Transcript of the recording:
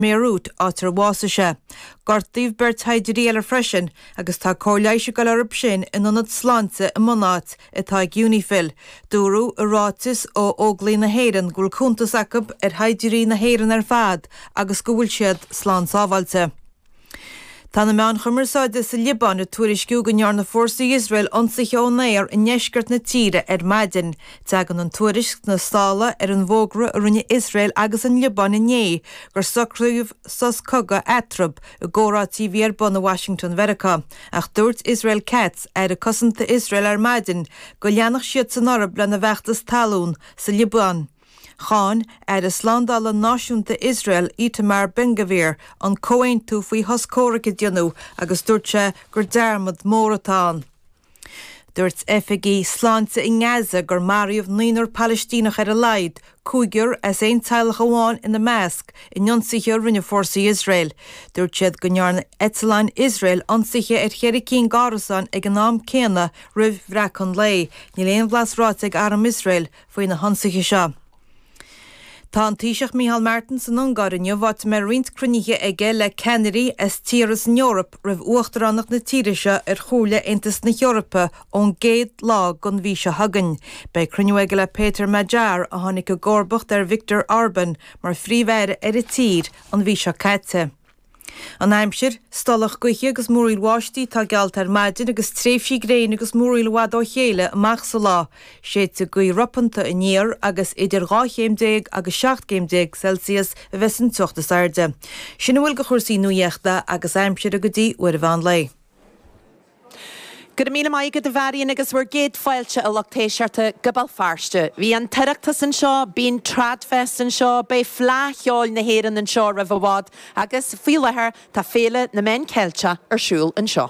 mBéiriút, áit ar bhásaigh sé. Gortaíodh beirt shaighdiúirí eile freisin agus tá cóir leighis ag dul orthu sin in ionad sláinte i mbunáit atá ag Unifil. Dúradh i ráiteas ó Óglaigh na hÉireann go bhfuil cuntas acu ar shaighdiúirí na hÉireann ar fad agus go bhfuil siad slán sábháilte. Tá na meáin chumarsáide sa Liobáin ag tuairisciú go ndearna fórsaí Iosrael ionsaithe ón aer i ndeisceart na tíre ar maidin. Teagann an tuairisc sna sála ar an bhfógra a rinne Iosrael agus an Liobáin inné gur socraíodh sos cogaidh eatarthu i gcomhráití a bhí ar bun i Washington Mheiriceá, ach dúirt Israel Katz, Aire Cosanta Iosrael ar maidin go leanfadh siad san orthu lena bhfeachtas talún sa Liobáin. Cháin Aire Slándála Náisiúnta Iosrael Itamar Ben-Gvir an comhaontú faoi shos comhraic a déanamh agus dúirt sé gur dearmad mór atá ann. Dúirt oifigigh sláinte i nGaza gur maraíodh naonúr Palaistíneach ar a laghad, cúigear as aon teaghlach amháin ina measc, in ionsaithe a rinne fórsaí Iosrael. Dúirt siad go ndearna eitleáin Iosrael ionsaithe ar cheithre cinn d'árasáin ag an am céanna roimh bhreacadh an lae. Níl aon bhlas ráite ag arm Iosrael faoi na hionsaithe seo. Tá an Taoiseach Micheál Martin san Ungáir inniu áit a mbeidh roinnt cruinnithe aige le ceannairí as tíortha as an Eoraip roimh uachtaránacht na tíre seo ar Chomhairle Aontas na hEorpa ón gcéad lá den mhí seo chugainn. Beidh cruinniú aige le Péter Magyar a tháinig i gcomharbacht ar Viktor Orban mar phríomh-aire ar an tír an mhí seo caite. An aimsir, Stolladh gaoithe agus múraíl bháistí atá geallta ar maidin agus tréimhsí gréine agus múraíl i bhfad ó chéile amach sa lá. Séidfidh gaoth ropanta aniar agus idir 12 chéim agus 17 gcéim Celsius a bheas an teocht is airde. Sin a bhfuil de chúrsaí nuaíochta agus aimsire go dtí uair an mheán lae. Go raibh míle maith agat a Mharion agus bhur gcéad fáilte a lucht éisteachta go Béal Feirste. Bhí an tOireachtas anseo, bíonn Tradfest anseo, beidh Fleadh Cheoil na hÉireann anseo roimh i bhfad agus faoi láthair tá Féile na Meán Ceilteach ar siúl anseo.